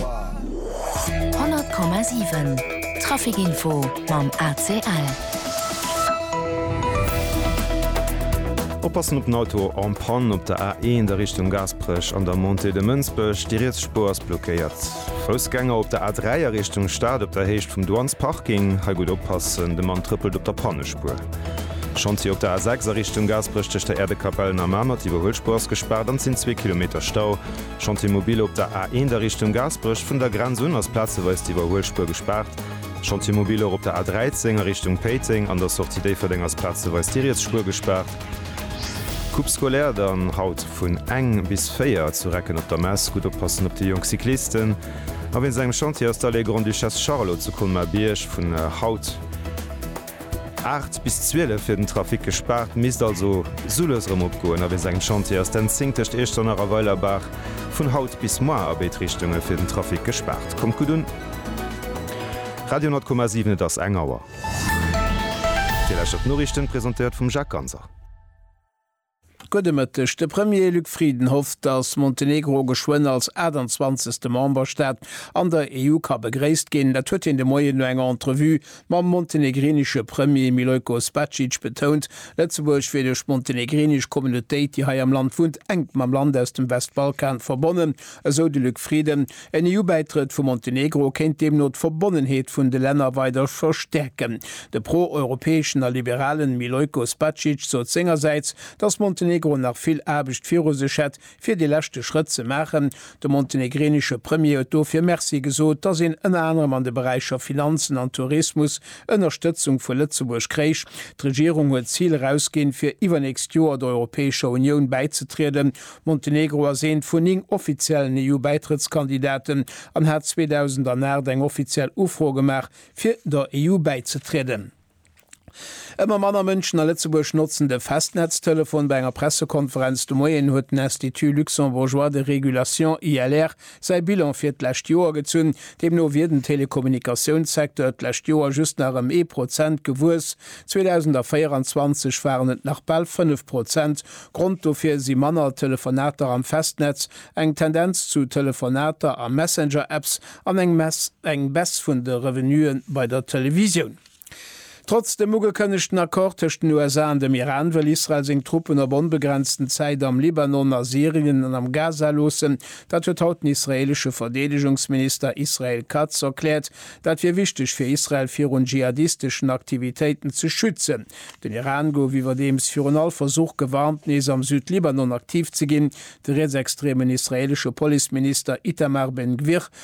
100,7 Trafic Info mam ACL. Oppassen op den Auto en panne op der A1 a Richtung Gaasperech an der Montée de Mënsbech, déi riets Spuer ass blockéiert. Foussgänger op der A3 a Richtung Stad op der Héicht vum Douanes Parking, hei gutt oppassen, de Mann trëppelt op der Pannespuer. Chantier op der A6 a Richtung Gaasperech tëscht der Äerdekapell an der Mamer, d'Iwwerhuelspuer ass gespaart an et sinn zwee Kilometer Stau. Chantier mobile op der A1 a Richtung Gaasperech, vun der Grenz un ass plazeweis d'Iwwerhuelspuer gespaart. Chantier mobile och op der A13 a Richtung Péiteng, an der Sortie Déifferdeng ass plazeweis déi riets Spuer gespaart. Coupe scolaire dann haut vun eng bis véier zu Recken op der Mess. Gutt oppassen op déi jonk Cyclisten. A wéinst engem Chantier ass d'Allée Grande-Duchesse Charlotte zu Colmar-Bierg vun haut. 8 bis 12 wier den Trafic gespaart, misst also soules erëm opgoen. A wéi sengem Chantier ass d'N10 tëscht Iechternach a Weilerbaach vun haut bis moar a béid Richtunge fir den Trafic gespaart. Kommt gutt un! Radio 10,7 Et ass eng Auer. Dir lauschtert d'Noriichten, presentéiert vum Jacques Ganser. Gudde Mëtteg. De Premier Luc Frieden hofft, datt Montenegro geschwënn als 28. Memberstaat an der EU ka begréisst ginn. Dat huet hien de Moien no enger Entrevue mam montenegrinesche Premier Milojkos Bacic betount. Lëtzebuerg wier duerch d'montenegrinesch Communautéit, déi hei am Land wunnt, enk mam Land aus dem Westbalkan verbonnen, esou de Luc Frieden. En EU-Bäitrëtt vu Montenegro kéint deemno d'Verbonnenheet vun de Länner weider verstäerken. De pro-europäeschen a liberalen Milojko Spacic sot sengersäits, datt Montenegro nach vill Aarbecht viru sech hätt, fir dee leschte Schrëtt ze maachen. De montenegrinesche Premier huet dofir Merci gesot, datt een ënner anerem an de Beräicher Finanzen an Tourismus Ënnerstëtzung vu Lëtzebuerg kréich. D'Regierung huet d'Zil erausginn, fir iwwernächst Joer der Europäescher Unioun bäizetrieden. Montenegro ass eent vun néng offiziellen EU-Bäitrëttskandidaten an hat 2008 eng offiziell Ufro gemaach, fir der EU bäizetrieden. Ëmmer manner Mënschen a Lëtzebuerg notzen de Festnetztelefon. Bei enger Pressekonferenz de Moien huet den Institut luxembourgeois de régulation, ILR, säi Bilan fir d'lescht Joer gezunn. Deemno wier den Telekommunikatiounssecteur d'lescht Joer just nach ëm ee Prozent gewuess, 2024 waren et nach bal fënnef Prozent. Grond dofir si manner Telefonater am Festnetz, eng Tendenz zu Telefonater a Messenger-Apps an eng Baisse vun de Revenuë bei der Televisioun. Trotz dem ugekënnegten Accord tëscht den USA an dem Iran, wëll Israel seng Truppen op onbegrenzten Zäit am Libanon, a Syrien an am Gaza loossen. Dat huet haut den israeelesche Verdeedegungsminister Israel Katz erkläert. Dat wier wichteg fir Israel virun dschihadisteschen Aktivitéiten ze schützen. Den Iran gouf iwwerdeems virun all Versuch gewarnt, nees am Südlibanon aktiv ze ginn. De rietsextreemen israeelesche Policeminister Itamar Ben-Gvir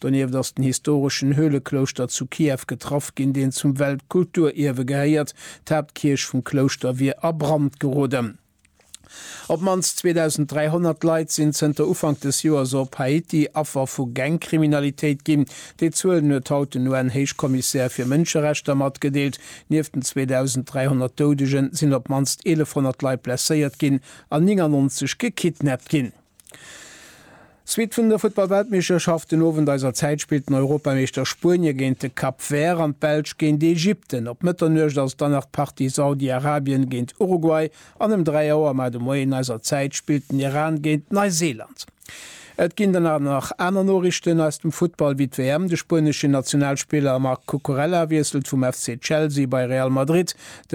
Donieft ass den historeschen Höhleklouschter zu Kiew getraff ginn, deen zum Weltkulturierwe gehéiert. D'Haaptkierch vum Klouschter wier a Brand geroden. Op d'mannst 2.300 Leit sinn zënter Ufank des Joers op Haiti Affer vu Gangkriminalitéit ginn. Déi Zuelen huet haut den UN-Héichkommissär fir Mënscherechter matgedeelt. Nieft den 2.300 Doudegen sinn op d'mannst 1.100 Leit blesséiert ginn an 99 gekidnappt ginn. Suite vun der Futtballweltmeeschterschaft den Owend eiser Zäit spillt den Europameeschter Spuenie géint de Cap Vert an d'Belsch géint Ägypten. Op Mëtternuecht ass dann nach d'Partie Saudi-Arabien géint Uruguay an ëm 3 Auer mar de Moien eiser Zäit spillt den Iran géint Neiseeland. Et ginn dann awer nach aner Noriichten aus dem Futtball wéi d'WM, de spueneschen Nationalspiller Marc Cucurella wiesselt vum FC Chelsea bei Real Madrid, de